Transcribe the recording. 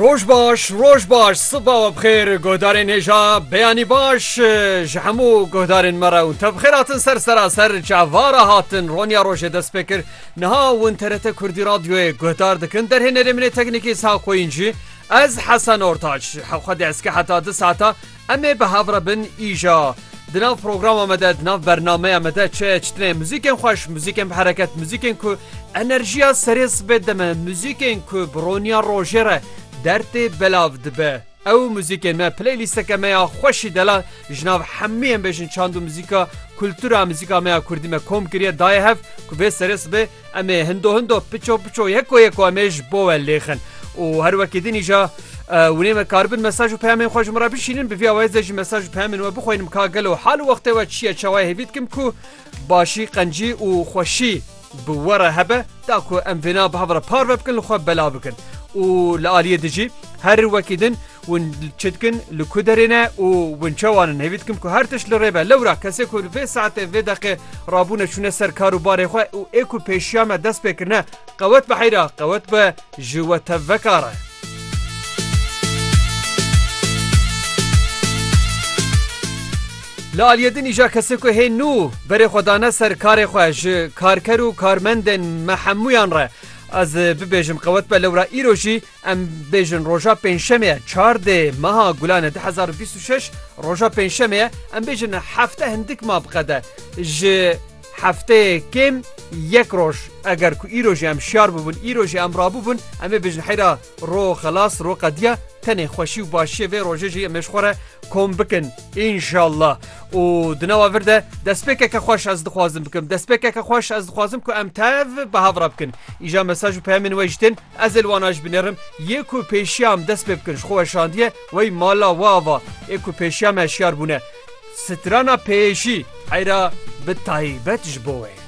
Roj baş roj baş siba we bixêr guhdarên hêja beyanî baş ji hemû guhdarên me re û te bixêr hatin ser seraser çavara hatin Ronya rojê dest pê kir niha win terete Kurdî radyoyê guhdar dikin derhê nerêminê teknîkî sa xweyîn jî ez hesen ortaç hewxedê ezke heta di saata Em ê bi hev re bin îja. Di nav programa me de, di nav bernameya me de çi çi tine? Muzîkên xweş, muzîkên bi hereket, muzîkên ku enerjiya serê sibê dime, muzîkên ku bi roniya rojê re dertê belav dibe. Ew muzîkên me playlîsteke me ya xweşî dela ji nav hemû yên bêjin çand û muzîka kultura muzîka me ya kurdî me kom kiriye daye hev ku vê serê sibê Em ê hindo hindo piço piço yeko yeko em ê ji bo we lêxin û her wekî din îja winê me karibin mesaj û peyamên xwe ji min re bişînin bi vîya wayê ze jî mesaj û peyamên we bixwînim ka gelo hal û wextê we çi ye çawayê hêvî dikim ku başî qencî û xweşî bi we re hebe da ku em vêna bi hev re parve bikin li xwe bela bikin û li aliyê dijî her wekî din Hûn çi dikin, li ku derê ne û hûn çawa ne? Hêvî dikim ku her tişt li rê be. Lewra kesê ku li vê saetê vê deqê rabûne çûne ser kar û barê xwe û ê ku pêşiya me dest pê kirine qewet bi heyra qewet bi ji we tev veka re. Li aliyê din îja kesê ku hê nû berê xwe dane ser karê xwe ji karker û karmendên me hemûyan re ez bibêjim qewet be lewra îro jî Em bêjin roja pêncşemê ye çar dê meha Gulane du hezar û bîst û şeş roja pêncşemê ye em bêjin hefte hindik ma biqede ji hefteyê kêm yek roj eger ku îro jî em şiyar bûbûn îro jî em rabûbûn em ê bêjin heyra ro xelas ro qediya tenê xweşî û başiyê vê rojê jî em ê ji xwe re kom bikin înşallah û di nava vir de destpêkeke xweş ez dixwazim bikim destpêkeke xweş ez dixwazim ku em tev bi hev re bikin îja mesaj û peyamên we jî tên Ez ê li wan a jî binêrim, yê ku pêşiya em dest pê bikin ji xwe weşandiye wey mala we ava, ê ku pêşiya me hişyar bûne. Strana pêyê jî heyra bi taybet ji bo we ye.